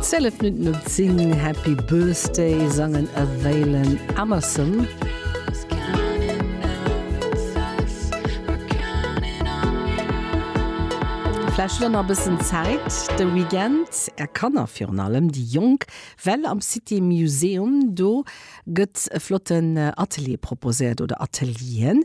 Zéllef Minutten op 10, Happy Birthday sangen a Waylon Emerson. Vläicht hutt der nach e bëssen Zäit de Weekend, är Kanner, virun allem déi Jonk, well am City Museum, do gëtt e flotten Atelier proposéiert oder Atelieren.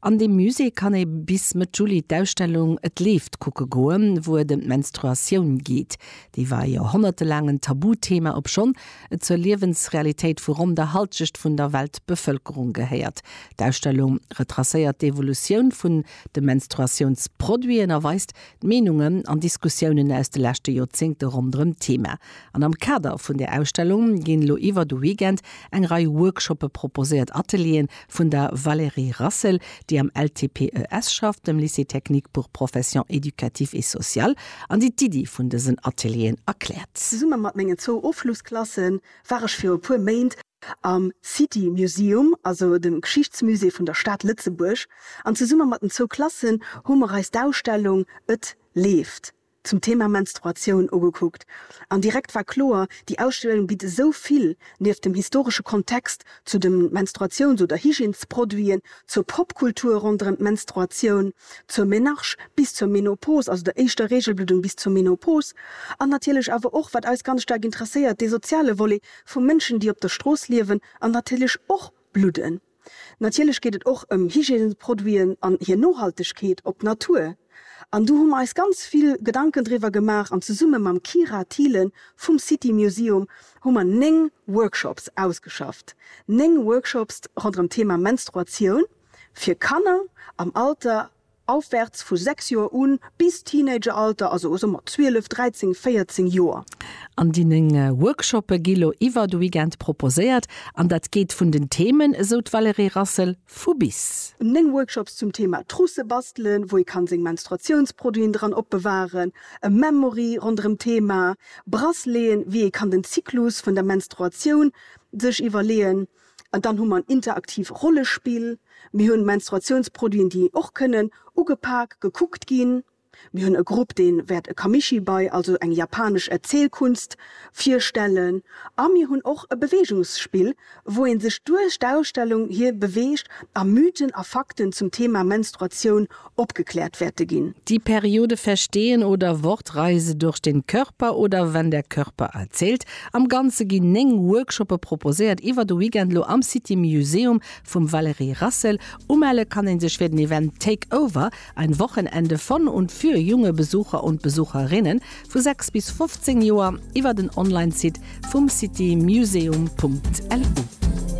An deem Musée kann ee bis Mëtt Juli d'Ausstellung Et leeft kucke goen, wou et ëm d'Menstruatioun geet. Déi war e jorhonnertelaangen Tabuthema, obschonn et zur Liewensrealitéit vu ronn der Halschecht vun der Weltbevëlkerung gehéiert. D'Ausstellung retracéiert d'Evolutioun vun de Menstruatiounsproduiten a weist, D'Meenungen an Diskussiounen aus de leschte Joerzéngte ronderëm d'Thema. An am Kader vun där Ausstellung ginn elo iwwer de Weekend eng Rei Workshoppe proposéiert, Atelieren vun der Valérie Rassel, déi am LTPES schafft, dem Lycée technique pour professions éducatives et sociales, an déi d'Iddi vun dësen Atelieren erkläert. Zesumme mat mengen zwou Ofschlussklasse war ech viru puer Méint am City Museum, also dem Geschichtsmusée vun der Stad Lëtzebuerg, an zesumme mat den zwou Klassen hu mer eis d'Ausstellung Et leeft zum Thema Menstruatioun ugekuckt. An direkt war kloer, déi Ausstellung bitt esou vill, nieft dem historesche Kontext zu de Menstruations oder Hygiènesproduiten, zur Popkultur ronderëm d'Menstruatioun, zur Menarche bis zur Menopos, also der éischter Reegelbluddung bis zur Menopos, an natierlech awer och, wat eis ganz staark interesséiert, dee soziale Volet Vu Mënschen, déi op der Strooss liewen an natierlech och bludden. Natierlech geet et och ëm Hygiènesproduiten an hir Nohaltegkeet op d'Natur. An do hu mer eis ganz vill Gedanken driwwer gemaach an zesumme mam Kyra Thielen vum City Museum hu mer néng Workshops ausgeschafft. Néng Workshops ronderëm d'Thema Menstruatioun fir Kanner am Alter Aufwärts vu 6 Joer un bis Teenageralter, also o so mat 12, 13, 14 Joer. An deenen Workshoppe gi lo iwwer de Weekend proposéiert an dat geet vun den Themen, esou d'Valerée Rassel, vu bis. 9 Workshops zum Thema Trousse bastelen, wou ee kann seng Menstruatiounsproduiten dran opbewahren, e Memory ronderëm Thema Brasseleeën, wéi ee kann den Zyklus vun der Menstruatioun sech iwwerleeën, An dann hu mer en interaktiv Rollespill. Mir hunn Menstruatiounsproduiten, déi och kënnen ugepak, gekuckt ginn. Mir hunn e Grupp, dee wäert e Kamishibai, also eng japanesch Erzielkunst, virstellen. A mir hunn och e Beweegungsspill, wou ee sech duerch d'Ausstellung hir beweegt a Mythen a Fakten zum Thema Menstruatioun opgeklärt werte gin. Die Periode Verstehen oder Wortreise durch den Körper oder Wenn der Körper erzählt. Am Ganze gin 9 Workshoppe proposéiert iwwer de Weekend lo am City Museum vum Valérie Rassel. Umelle kann een sech fir den Event Take Over, ein Wochenende von und für junge Besucher und Besucherinnen vu 6 bis 15 Joer iwwer den Online-Site vum citymuseum.lu.